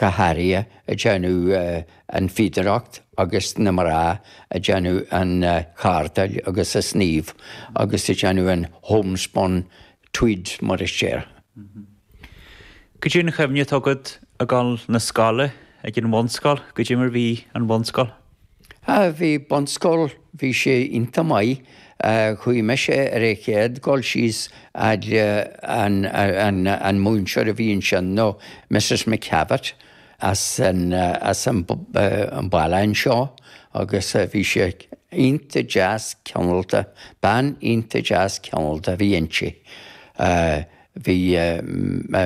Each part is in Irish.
go háirithe a déanamh an fhíodóireacht agus na mná a déanamh an chardáil agus an sníomh agus a déanamh an homespun tweed mar a déarfá. Goidé an chuimhne atá agat ag gabháil 'na scoile ag an bhunscoil, goidé mar bhí an bhunscoil? Ha, bhí bunscoil, bhí sé iontach maith. Chuaigh mise ar an chéad dul síos fhad le an múinteoir a bhí ansin nó Mrs McDevitt as an baile anseo agus bhí sí iontach deas cineálta, bean iontach deas cineálta a bhí inti. Bhí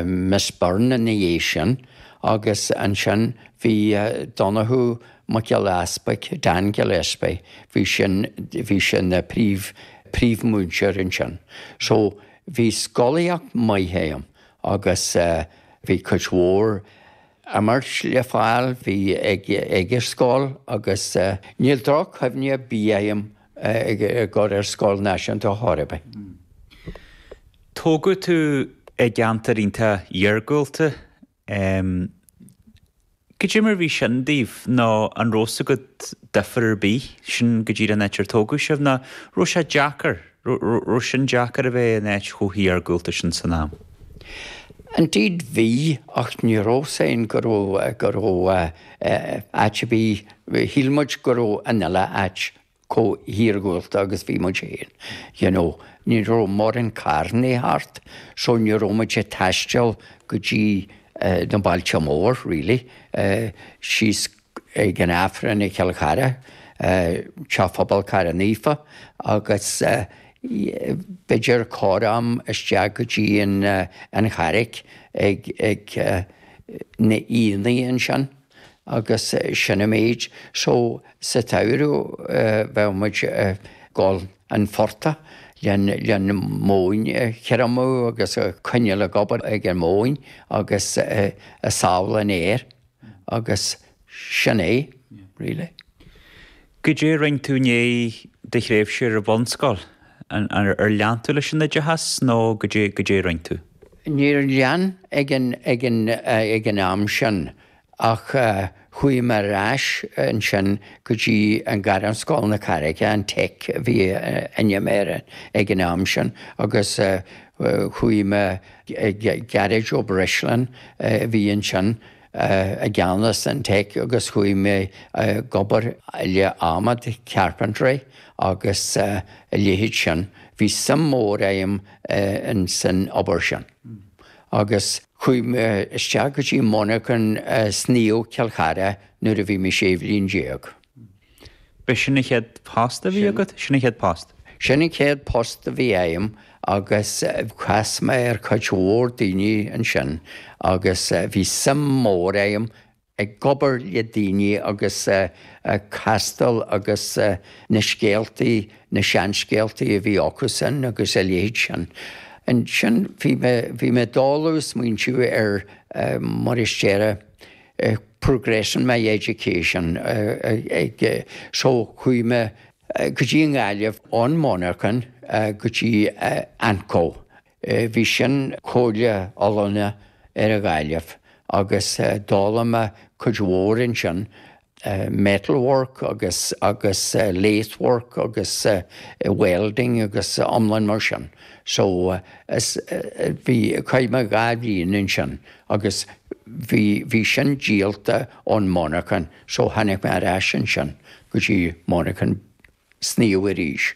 Miss Byrne ina dhiaidh sin agus ansin bhí Donncha Mac Giolla Easpaig, Dan Gillespie, bhí sin, bhí sé na príomh, príomh-mhúinteoir ansin. So bhí scolaíocht maith a'm agus bhí cuid mhór imirt le fáil, bhí ag, ag a scoil agus níl droch-chuimhne ar bith a'm ag gabháil ar scoil náisiúnta ar chor ar bith. Tógadh tú i gceantar iontach iargúlta. Goidé mar bhí sin daoibh nó an raibh a fhios agaibh difear ar bith sin goidé an áit ar tógadh sibh nó raibh sé deacair, raibh sin deacair a bheith in áit chomh hiargúlta sin san am? Indeed bhí, ach ní raibh a fhios againn go raibh, go raibh áit ar bith Shíl muid go raibh an uile áit chomh hiargúlta agus bhí muid féin, you know, ní raibh mórán carranna thart, so ní raibh muid ag taisteal go dtí na bailte mór, really, síos ag an Aifreann i gCill Chartha, Teach Phobail Chartha Naofa, agus b'fhéidir corram isteach go dtí an Charraic ag na aonaigh ansin. agus sin an méid so sa tsamhradh bheadh muid ag gabháil 'na phortaigh leis an mhóin a thriomú agus ag coinneáil ag obair ag an móin agus ag sábháil an fhéir agus sin é really. Goidé a rinn tú i ndéidh do thréimhse ar an bhunscoil? Ar lean tú leis an oideachas nó goidé a rinn tú? Níor lean ag an am sin ach chuaigh mé ar ais ansin go dtí an Ghairmscoil na Carraige, an Tech a bhí ainm air ag an am sin, agus chuaigh mé Gearóid Ó Breisleáin a bhí ansin, i gceannas an tech agus chuaigh mé ag obair le adhmad, carpentry agus a leithéid sin. Bhí suim mór agam in san obair sin. Agus chuaigh mé isteach go dtí monarchan sníomh Cill Chartha nuair a bhí mé sé bhliain déag. B'shin an chéad post a bhí agat? Sin an chéad post. Sin an chéad post a bhí agam agus chas mé ar cuid mhór daoine ansin agus bhí suim mór agam ag obair le daoine agus castáil agus na scéaltaí, na seanscéaltaí a bhí acusan agus a leithéid sin. Ansin bhí mé, bhí mé i dtólamh ag smaointiú ar mar is déarfá, progress in my education so chuaigh mé go dtí an Ghaillimh ón monarchan go dtí AnCO. Bhí sin Comhairle Oiliúna ar an Ghaillimh agus d'fhoghlaim mé cuid mhór ansin, metal work agus agus lathe work agus welding agus iomlán mar sin. So bhí, chaith mé dhá bhliain ansin. Agus bhí, bhí sin díolta ón monarchan, so tháinig mé ar ais ansin go dtí monarchan sníomh arís.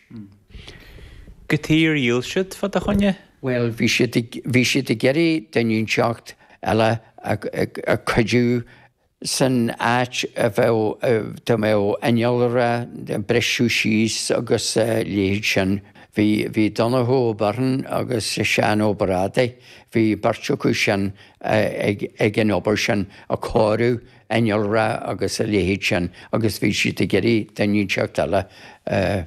Cad chuige ar dhíol siad fá do choinne? Bhuel, bhí siad ag, bhí siad ag iarraidh duine inteacht eile a, a, a cuidiú. san áit a bheadh, dá mbeadh innealra, briseadh síos agus a leithéid sin. Bhí, bhí Donncha Ó Beirn agus Seán Ó Brádaigh, bhí beirt acu sin ag, ag an obair sin, ag cóiriú innealra agus a leithéid sin agus bhí siad ag iarraidh duine inteacht eile a,